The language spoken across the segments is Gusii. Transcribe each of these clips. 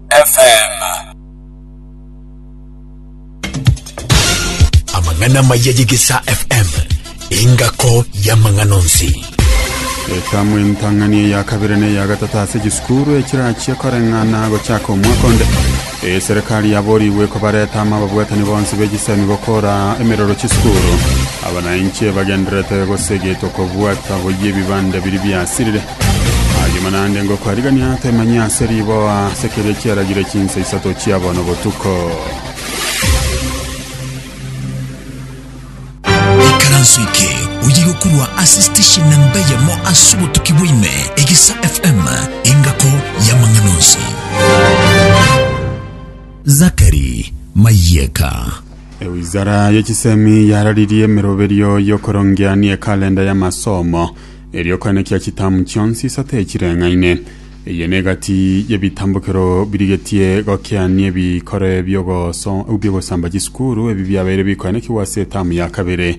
FM. Amang'ana amaya y'Egesaa FM, engako y'amang'ana onsi. Etamu entang'ani eya kabere na eya gatatu ase chisukuru echirachie koreng'ana gochaka omwaka onde eserikali yaborigwe kobareta ama ababwatani bonsi b'echisemi gokora emerero chisukuru abanainche bagenderete gosegetwa kobwata boyie ebibanda biri biasirire Agima naende ngokwarigania temanyia ase riboa, ase keria chiaragire chinsa isato chia bono botuko. ikaranso eke oyige korwa ase station na mbeyemo ase obotuki bwaime egesa fm engako y'amang'ana onsi zakari mayeka Ewizara y'echisemi yararirie emeroberio y'okorongia ni ekalenda y'amasomo Erio okanekia chitamu chionsi isato echireng'aine. Eye negati y'ebitambokero birigetie gokeania ebikore biogosamba chisukuru ebi biabeire bikoenekigwa ase etamu ya kabere.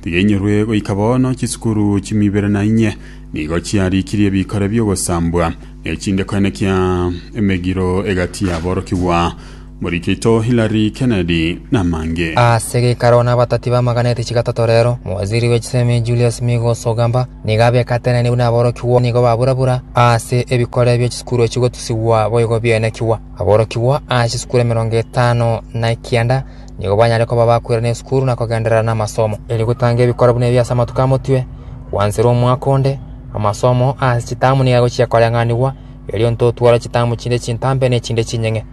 Tiga inyorwe goika bono chisukuru chimia ibere na inye nigo chiarikirie ebikore biogosambwa, ne chinde koenekia emegiro egati y'aborokigwa. Morikito Hillary Kennedy, na mange. Ase geikaro na abatati b'amagana etichi gatato rero, mowaziri bwe chisemi Julius Migos Ogamba nigo abekatenenie buna aborokigwa nigo babura-bura ase ebikore bie chisukuru echigotusigwa boigo biaenekigwa. Aborokigwa a chisukuru emerongo etano na ekianda nigo banyare koba bakwera n'esukuru na kogenderera namasomo. Erio gotanga ebikore buna ebi ase amatuko amotwe, gwanserwa omwaka onde, amasomo ase chitamu nigo agochia koreng'anigwa, erio intotware chitamu chinde chintambe ne chinde chinyeng'e.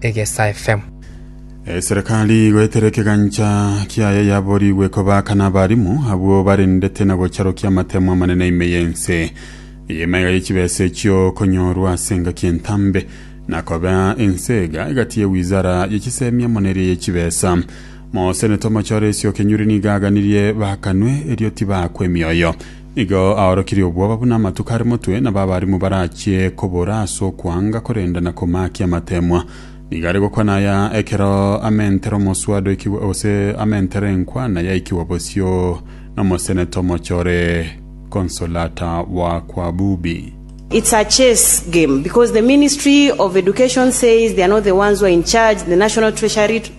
egesaifemu. Eserekari igoetera ekegancha kiaye yaborigwe kobaka n'abarimu abwo barendete na gocharokia amatemo amanene ime y'ense. Eye emaiga ye chibesa echio konyorwa ase engaki entambe, na koba ense iga egati ye wizara ye chisemi amo neria ye chibesa. Mosenete omochore Esioke Nyuri nigo aganirie bakanwe, erio tibakwa emioyo. Igo aorokirie obwoba buna amatuko are motwe, nabo abarimu barachie kobora ase okwanga korenda na komaakia amateemwa. Nigo are gokwana aya ekero amentere omoswada oikigwe, gose amentere enkwana yaikigwa bosio nomoseneta omochore Consolata Wakwabubi. It's a chess game because the ministry of education says they are not the ones who are in charge, the national treasury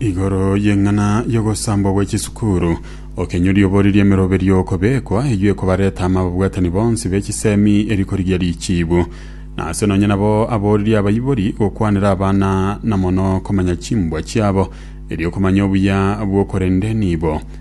Igoro y'eng'ana y'ogosambwa gwe chisukuru, okenyori oboririe emeroberio okobekwa, eyio ekobareta ama ababwatani bonsi be chisemi eri korigia richiibu. Na ase nonye nabo aboririe abaibori gokwanera abana na mono komanya chimbwa chiabo, erio komanya obuya bw'okorende nibo.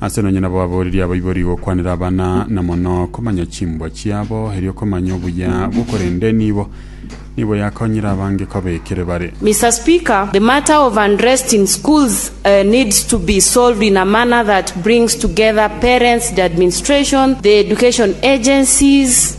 Ase nonye nabo aboreri abaibori gokwanera abana, na mono komanya chimbwa chiabo, erio komanya obuya bwo korende nibo nigo yakonyire abange koba ekere bare. Mister speaker, the matter of unrest in schools needs to be solved in a manner that brings together parents, the administration, the education agencies,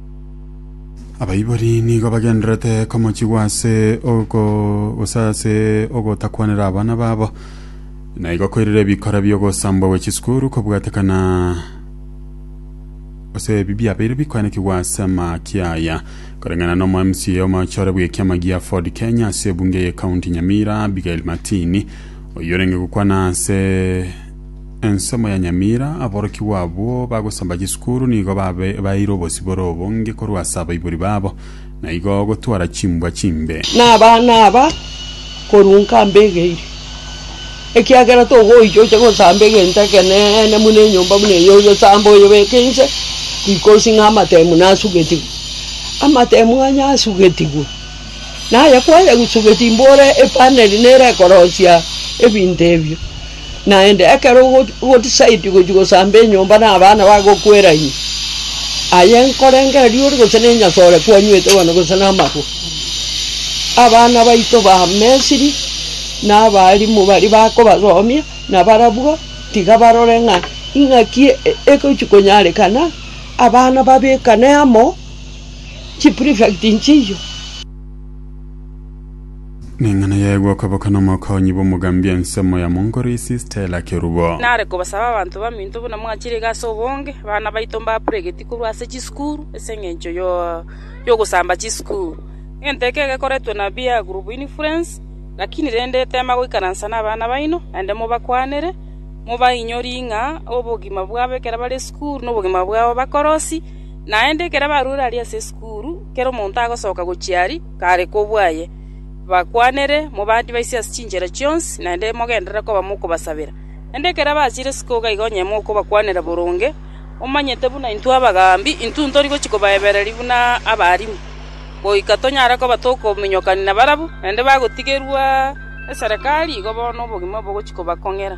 abaibori nigo bagenderete komochigwa ase oko gose ase ogotakwanera abana babo na igo koirire ebikora bi'ogosambwa gwe chisukuru kobwatekana ase ebi biabeire bikwanekigwa ase amaki aya koreng'ana na omo mca omochore bw'ekiama gia ford kenya ase ebunge y'ekaunti nyamira abigail matini oyio orenge gokwana ase Ensemo ya Nyamira, aborokigwa abwo bagosomba chisukuru nigo babe baeire obosibore obonge korwa ase abaibori babo, na igo gotwara chimbwa chimbe. Na abana aba korunka mbegeiri, ekiagera togoicha oche gosamba egento ekeneene buna enyomba buna eye, oyosamba oyebeke inse, tikosi ng'a amatemu nasugetigwe. Amatemu onye asugetigwe. Naye kwayegusubeti imboro epana eria nere ekorosia ebinto ebio, naende ekero ogotisaiti gochia gosamba enyomba na abana bagokwera ime, aye nkorengera riori gose na enyasoo ore kwanywete bono gose na amarwa. Abana baito ba Misiri na abaalimu baria bakobasomia na barabwo tiga barore ng'a ing'aki egochia konyarekana, abana babekane amo. chiprefect nchiyo. Neng'ana yaye gwakoboka nomokoonyi bw'omogambi ensemo ya mongoro isi Stella Kerubo. Nare kobasaba abanto baminto buna mwachirege ase obonge, abana baito mbapuregeti korwa ase chisukuru ase engencho yogosamba chisukuru. Egento eke gekoretwe na peer group influence, lakini rende tema goikaransa nabana baino naende mobakwanere, mobainyorie ng'a obogima bwabo ekero bare esukuru nobogima bwabo bakorosi, Naende ekero abaruore aria ase esukuru, kera omonto agosoka gochia aria kare kobua aye, bakwanere, Mobadibaise ase chinchera chionsi, naende mogenderere koba mokobasabera. Naende ekero abachire isiko iga igo onye mokobakwanera boronge, omanyete buna intwe abagaambi intwe ntori gochia kobaebereria buna abarimu, goika tonyare koba tokominyokania nabarabwo, naende bagotigerwa neserekari, igo bono obogima obo bogochia kobakong'era.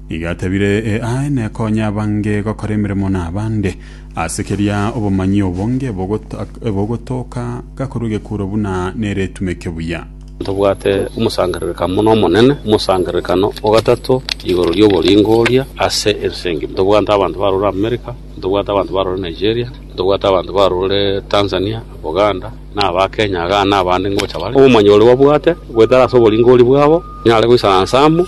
Igo atebire, Eae, nekonye abange gokora emeremo n'abande. Ase keria obomanyi obonge ebogota- ebogotooka gakorwa egekuro buna nere etumeke buya. Ntobwate omosangererekano buna omonene, omosangererekano o gatato igoro ri'oboringo oria ase ense engima. Ntobwate abanto barure America, ntobwate abanto barure Nigeria, ntobwate abanto barure Tanzania, Buganda, na aba Kenya igaa, na abande ngocha bare. Obomanyi oria babwate goetera ase oboringo oria bwabo, nyare goisaransa amo.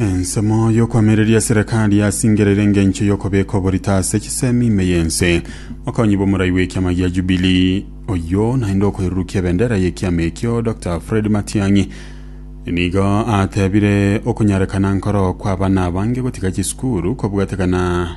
Ensemo y'okwamireria eserekari yasingereire engencho y'okobeka oborito ase chisemi ime y'ense. Okonyi bw'omorai bw'ekiama gia Jubilee oyo naende okoirurukia ebendera y'ekiama ekio Dr. Fred Matiang'i nigo atebire okonyarekana nkoro kw'abana abange gotiga chisukuru kobwatekana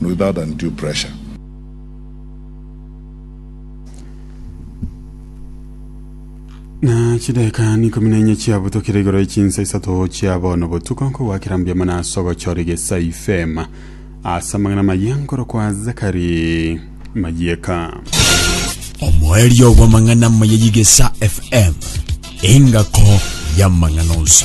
without undue pressure. na chideka nikomi na inye chiabutokire igoro echinsa isato chia bono botuko nkogwakera mbuya mana ase ogochora egesa ifema ase amang'ana maya nkorokwa zakari mayeka omoerio bw'amang'ana maya y'igesa fm engako y'amang'ana onsi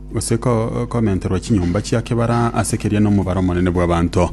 gose komenterwa chinyomba chia kebara ase keria nomobaro omonene bw'abanto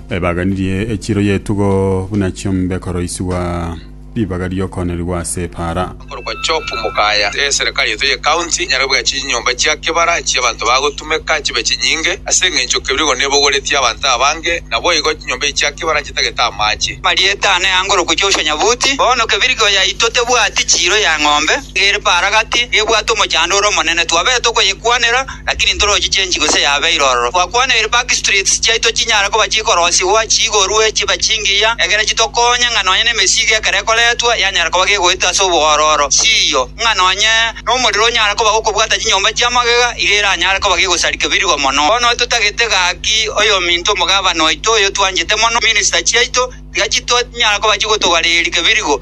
ebaganirie echiro y'etugo buna chiombe koroisigwa ribaga ri'okoonerigwa ase epaara. Okorokwa Chopu mokaya eserikari yaito ye county enyare kobugia chinyomba chia kebara echia abanto bagotumeka chibe chinyinge ase engencho keru igo nebogoretie abanto abange naboigo chinyomba echi chia kebara chitagete amache. Marieta ane angorokwa Joshua Nyabuti, Bono Kebirigeo yaito tebwati chiro ya ng'ombe. ere paragati ebwate omochando ore omonene, twabete tokoyekwanera, lakini ntorochi chenchi gose yabeire ororo. Twakwaneire back streets chiaito chinyare koba chikorosigwa, chiigorwe, chibe chingiya, egere chitokonye ng'a nonye nemesigo ekero ekoretwa yanyara koba gegoeta ase oboororo. Siiyo, ng'a nonye nomorero onyare koba gokobwata chinyomba chia magega, iga eranyare koba gegosarika birigo mono. Bono totagete gaki oyominto omogabana oito oyo twanchete mono, minister chiaito, tiga chito nyara koba chigotogareria birigo.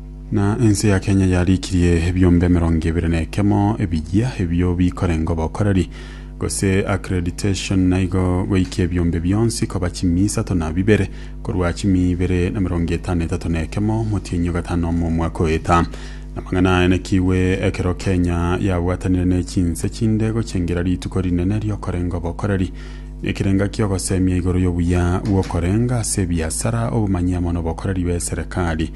Na ense ya Kenya yarikirie ebiombe emerongo ebere na ekemo ebiyia ebio bikorenga obokoreri gose accreditation naigo goikia ebiombe bionsi koba chimi isato na bibere korwa chimi ibere na merongo etano etato na ekemo motienyi ogatano omo omwaka oeta namang'ana aya nakigwe ekero Kenya yabwatanire ne chinse chinde gochengera rituko rinene riokorenga obokoreri nekerenga kiogosemia igoro yobuya bwokorenga ase ebiasara obomanyi amo nobokoreri b'eserekari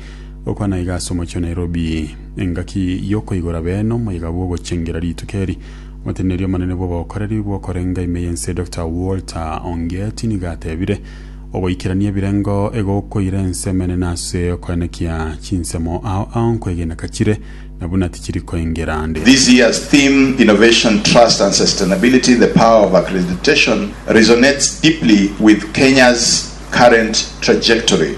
Gokwana iga ase omochie o Nairobi, engaki y'okoigora bene omwaiga bw'ogochengera rituko eri, Omoteneneri omonene bw'obokoreri bw'okorenga ime y'ense Doctor Walter Ongeti nigo atebire, Ogoikerania ebirengo egokoira ense emenene ase okoenekia chinsemo ao ao nkwegena kachire na buna tichiri koengera nde. This year's theme, Innovation, Trust and Sustainability, The Power of Accreditation, resonates deeply with Kenya's current trajectory.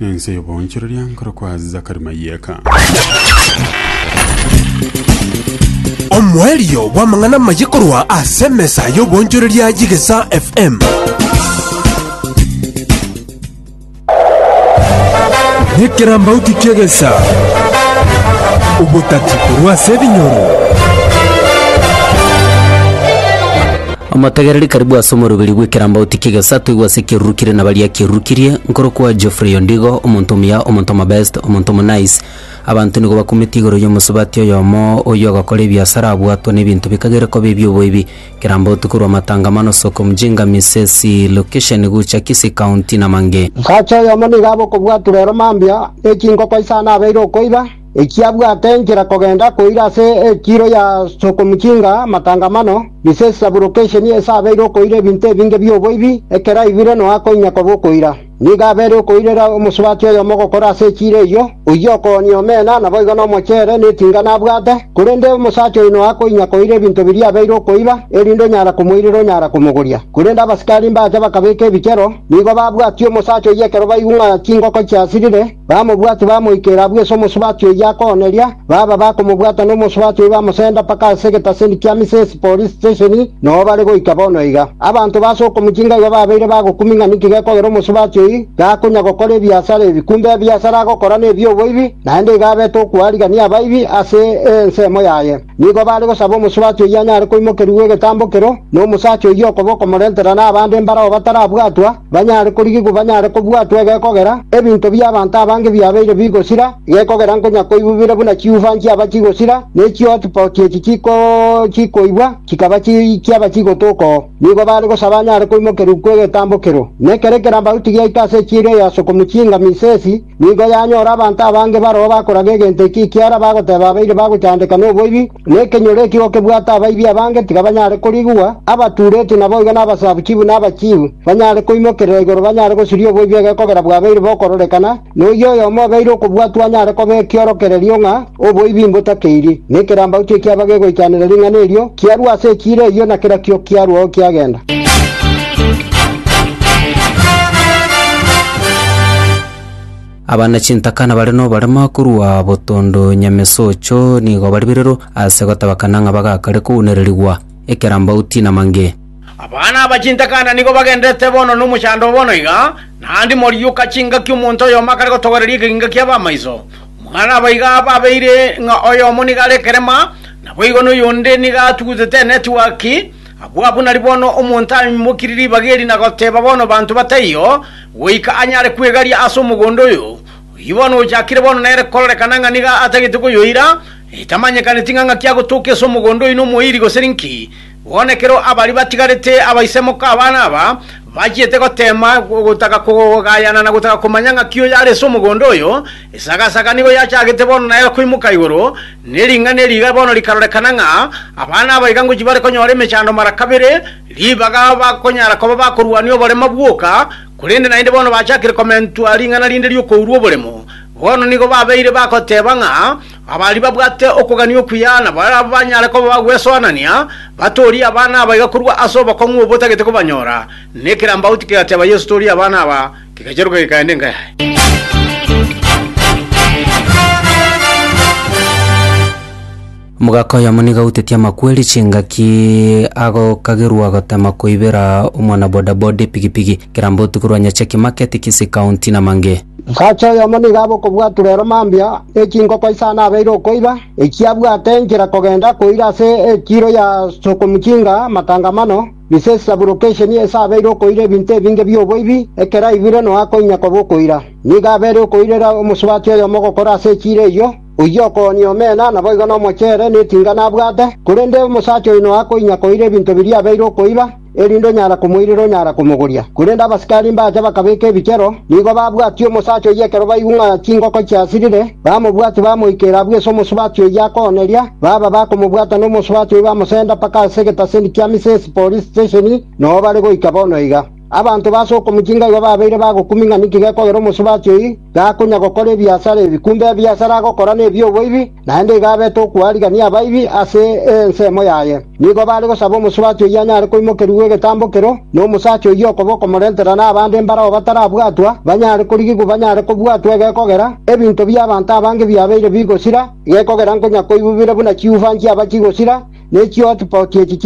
Ense y'oboonchoreria nkorokwa Zakari Mayeka. Omoerio bw'amang'ana amaye korwa ase emesa y'oboonchoreria y'Egesaa FM. Nekerambauti ki'egesaa, obotati korwa ase ebinyoro. Omotegereri karibu ase omoroberi bw'ekerambauti ki'egesato igwe ase ekirurukirie na baria kirurukirie, nkorokwa Geoffrey Ondigo, omonto omuya, omonto omobest, omonto omonice. Abanto nigo bakumetie igoro y'omosubati oyomo oyio ogokora ebiasara abwatwa n'ebinto bikagere koba ebi'oboibi. Kerambauti korwa Matangamano, Soko Mjinga, Misesi, Location gocha Kisii County na mang'e. Osacha oyomo nigo abe okobwaturwa ero mambia, ne chinkoko isano abeire okoiba, Ekiabwate enchera kogenda koira ase ekiiro ya Sokomuchinga amatangamano, Misesi Sabrokeshen ase abeire okoira ebinto ebinge bi'oboibi, ekero aigwire noa koinyia koba okoira. Nigo abeire okoirera omosubati oyomo ogokora ase ekiiro eyio, oyio okoonia omena, naboigo nomochere, netinga nabwate, korende omosacha oyio noa koinyia koira ebinto biria abeire okoiba, erinde onyara komoirera onyara komogoria. Korende abasikari mbacha bakabeka ebichero, nigo babwatie omosacha oyio ekero baigwe ng'a chingoko chiasirire, Bamobwate bamoikera abwo ase omosubati oyio akooneria, baba bakomobwata nomosubati oyio bamosenda mpaka ase egetaseni kia Misesi Police Station, noo bare goika bono iga. Abanto b'ase okomochie ngaiga babeire bagokumia ng'a ninki gekogera omosubati oyio gakonya gokora ebiasara ebi, kumbe ebiasara agokora nebi'oboibi, naende iga abete okoarigania abaibi ase ensemo yaye. Nigo baare gosaba omosubati oyio anyare koimokerigwa egetambo ekero, na omosacha oyio okoba okomorentera nabande mbarao batarabwatwa, banyare korigigwa banyare kobwatwa egekogera, ebinto bi'abanto abange biabeire bigosira, egekogera nkonya koibubire buna chiufa nchiaba chigosira, ne chihotpot echi chikoibwa chikaba chiaba chigotoka oo. Nigo baare gosaba anyare koimokerigwa egetambo ekero, na ekero ekerambaruti giaika ase echiiri eyo ase okomuchinga Misesi, Nigo yanyora abanto abange baroo bakoraga egento ekio ekiara bagoteeba abaire bagochandeka noboibi, na ekenyoro ekio gokebwata abaibi abange tikabanyare korigwa, abatuuretwe naboigo nabasabu chibu na abachiibu, banyare koimokerera igoro banyare gosiria oboibi egekogera bwabeire bokororekana, na oyio oyomo obeire okobwatwa anyare koba ekiorokererio ng'a Oboibi mbotakeiri, na ekerambau tikiaba gegoitanera ring'ana erio, kiarua ase ekiira eyio, na kerakio kiaruao kiagenda. Abana chintaka nabare noborema korwa botondo nyamesocho nigo bari birero ase gotabakana ng'a bagakare kounererigwa ekerambau tinamange. Abana aba chintaka na nigo bagenderete bono nomochando bono iga, naende morioka chingaki omonto oyomo akare gotogoreria ekeginga ki'abamaiso, Muna nabaiga babeire ng'a oyomo nigo are ekerema, naboigo noyonde nigo atugutete enetiwaki, abwo abwo nari bono omonto aimokirie ribaga eri na goteba bono banto bataiyo, goika anyare kwegaria ase omogondo oyo. Oyio bono ochakire bono nere kororekana ng'a nigo atagete koyoira, etamanyekaneti ng'a ng'aki agotooka ase omogondo oino omoiri gose ninki, Bono ekero abaria batigarete abaisemoka abana aba bachiete goteema gotaka kogayana na gotaka komanya ng'aki oyo are ase omogondo oyo, esagasaaga nigo yachagete bono naye koimoka igoro, ne ring'ana eri iga bono rikarorekana ng'a abana aba iga ngochi bare konyora emechando mara kabere, ribaga bakonyara koba bakorwania oborema bwoka, korende naende bono bachakire komentwa ring'ana rinde ri'okourwa oboremo. Bono nigo babeire bagoteeba ng'a Abaria babwate okogania okuya nabo banyare koba bagwesoanania, batoorie abana aba iga korwa ase obokong'u obotagete kobanyora. Na ekerambauti kegatiaba Yeso, Toorie abana aba. Kegacheroka gekaenda enka yaye. Omogaka oyomo nigo autetie amakweri chingaki agokagerwa gotema koibera omwana bodaboda epigipigi. Ekerambauti korwa Nyacheki Market, Kisii County, Namange. Omosacha oyomo nigo abe okobwaturwa ere mambia ne chinkoko isano abeire okoiba, ekiagera abwate enchera kogenda koira ase etiiro ya Sokomuchinga Matangamano, Misesi Saburokesheni, ase abeire okoira ebinto ebinge bi'oboibi, ekero aigwire nonya akoinyia koba okoira. Nigo abere okoirera omosubati oyomo ogokora ase etiiro eyio, oyio okoonia omena, naboigo nomochere, neting'ana abwate, korende omosacha oyo nonya akoinyia koira ebinto biria abeire okoiba. erinde onyara komoirera onyara komogoria. Korende abasikari mbacha bakabeka ebichero, nigo babwatia omosacha oyio ekero baigwa ng'a chingoko chiasirire, bamobwatia bamoikeira abwo ase omosubati oyio akooneria, baba bakomobwata nomosubati oyio bamosenda mpaka ase egetaseni kia Misesi Police Station, noo bare goika bono iga. Abanto b'ase okomochiinga igo babeire bagokumia ng'a ninki gekogera omosubati oyio, gakonya gokora ebiasara ebi, kumbe ebiasara agokora nebi'oboibi, naende igo abete okwarigania abaibi ase ensemo yaye. Nigo bare gosaba omosubati oyio anyare koimokerigwa egetambo ekero, na omosacha oyio okoba okomorentera nabande mbarao batarabwatwa, banyare korigigwa banyare kobwatwa egekogera, ebinto bi'abanto abange biabeire bigosira, egekogera nkonya koibubire buna chiufa nchiaba chigosira, ne chihotpoti echi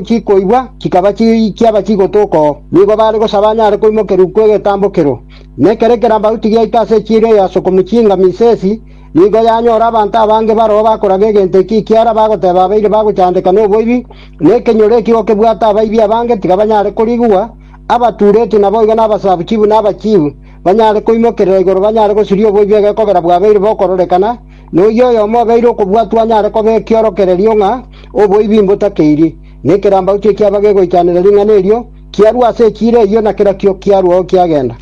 chikoibwa chikaba chiaba chigotoka oo. Nigo bare gosaba anyare koimokerigwa egetambo ekero. Na ekero ekerambaruti giaito ase echiira eyo ase okomochiinga Misesi, nigo yanyora abanto abange baroo bakoraga egento ekio ekiara bagoteba abaire bagochandeka noboibi, na ekenyoro ekio gokebwate abaibi abange tiga banyare korigwa, abatuuretwe naboigo nabasabu chibu na abachiibu, banyare koimokerera igoro banyare gosiria oboibi egekogera bwabeire bokororekana, na oyio oyomo obeire okobwatwa anyare koba ekiorokererio ng'a oboibi mbotakeirie. Na ekerambaruti ekiaba gegoichanera ring'ana erio, Kiarua ase ekiira eyio, na kerokio kiaruao kiagenda.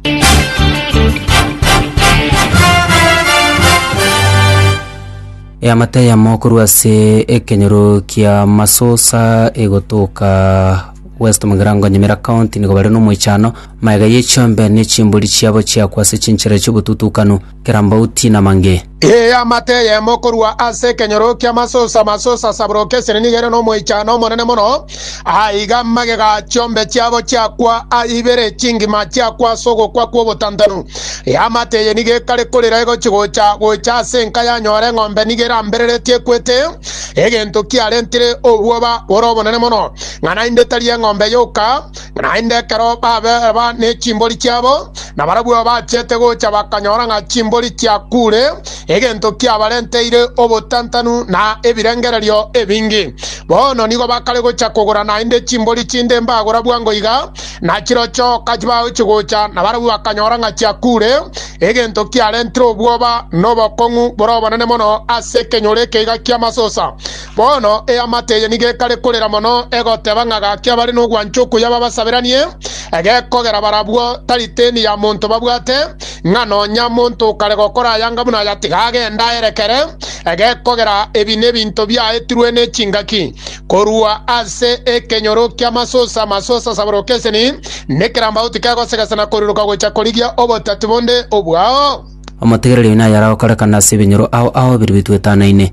Eamate eyemo korwa ase ekenyoro kia Masosa egotoka West Mugirango Nyamira County nigo bare nomoichano, magega ye chiombe ne chimbori chiabo chiakwa ase chinchera chiobotutukanu. kera mbauti na mange. Ee, amate eyemo korwa ase ekenyoro ki'amasusa, amasusa asaburoke esiri nigo ere nomoichano omonene mono. Aiga magega a chiombe chiabo chiakwa a ibere chingima chiakwa ase ogokwa kw'obotantanu. Ee, amate eye nigo ekare korira egochi-gocha gocha ase enka yanyora eng'ombe nigo erambereretie ekwete, egento kiarentire obwoba bore obonene mono, ng'a naende tari eng'ombe yoka, Naende ekero baberwa ne chimbori chiabo, na barabwo bachete gocha bakanyora ng'a chimbori chiakuure, egento kiabarenteire obotantanu na ebirengererio ebinge. Bono nigo bakare gocha kogora naende chimbori chinde mbagora bwango iga, na chirochio kachibaao chigocha, na barabwo bakanyora ng'a chiakuure, egento kiarentire obwoba na obokong'u bore obonene mono ase ekenyoro eke iga ki'amasusa. Bono eamate eye nigo ekare korera mono, egoteba ng'a gaki abare nogwancha okuya babasaberanie, egekogera barabwo tariteni ya monto babwate, ng'a nonya monto okare gokora ayanga buna aya tiga agende aerekere, egekogera ebi nebinto biaetirwe nechingaki korwa ase ekenyoro ki'amasusa, amasusa asaboroke eseni, nekerambauti kegosegesa na koriroka gocha korigia obotati bonde obwao. Omotegereri oyo naye aragokorekana ase ebinyoro ao ao biri bitwetanaine.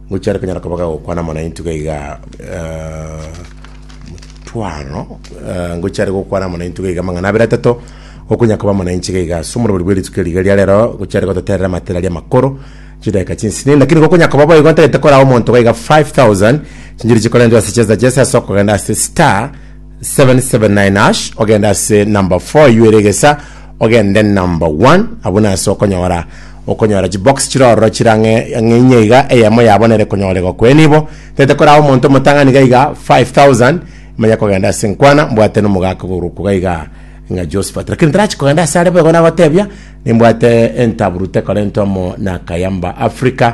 Gochia rero kanyara koba gagokwana amang'ana ainto iga iga, motwano, ngochia rero gokwana amang'ana ainto iga iga amang'ana abere atato, gokonya koba amang'ana ainche iga iga ase omorweri bwe rituko riga ria rero, gochia rero gototerera amatera aria amakoro, chidakika chinsini, lakini gokonya koba boigo ntagete koraa omonto iga iga 5000, chinchiri chikorentwe ase chesesa chese ase okogenda ase star. 779 ash ogende ase number 4 yu eregesa ogende number 1 abwo nase okonyora okonyora chibox chirororo chirang'e ang'e inye iga eyemo yabo nere konyorego kwe nibo tete koraha omonto omotang'ani iga iga 5000 manya kogenda ase nkwana mbwate nomogaka ogorokwa iga iga ng'a Josephat lakini tarachi kogenda ase are boigo nagotebia nimbwate entabu rute korentwa mo na Kayamba Africa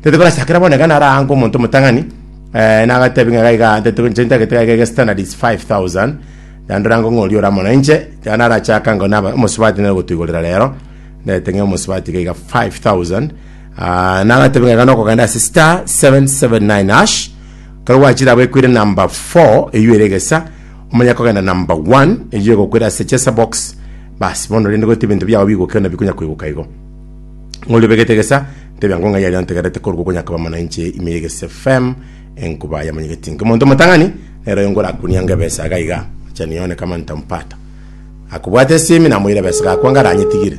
Tete korachakera bono iga naro aange omonto omotang'ani eh, nagatebi ng'a gaiga tete inche intagete gaiga ege standard is 5000 yandora ngo ng'ori ora mono inche iga narachaka ngo naba omosubati nere gotuigorera rero ndete ng'a omosubati gaiga 5000 ah, nagatebi ng'a iga nokogenda ase star 779 hash kero gwachire abo ekwire number 4 eywo ere egesa omanya kogenda number 1 eywo egokwera ase chesa box basi bono rende gote ebinto biao bigoke na bikonya koigoka igo ng'ori obegete egesa, ntebia ng'o ng'ai aria antegerete korwa gokonyakaba mana inche ime y'egese FM enkuba ya monyegeti inke monto motang'ani nero oyo ngorakunianga ebesa iga iga acha nione kama nitampata akobwate esimi namoira ebesa gakwa ngara anyetigire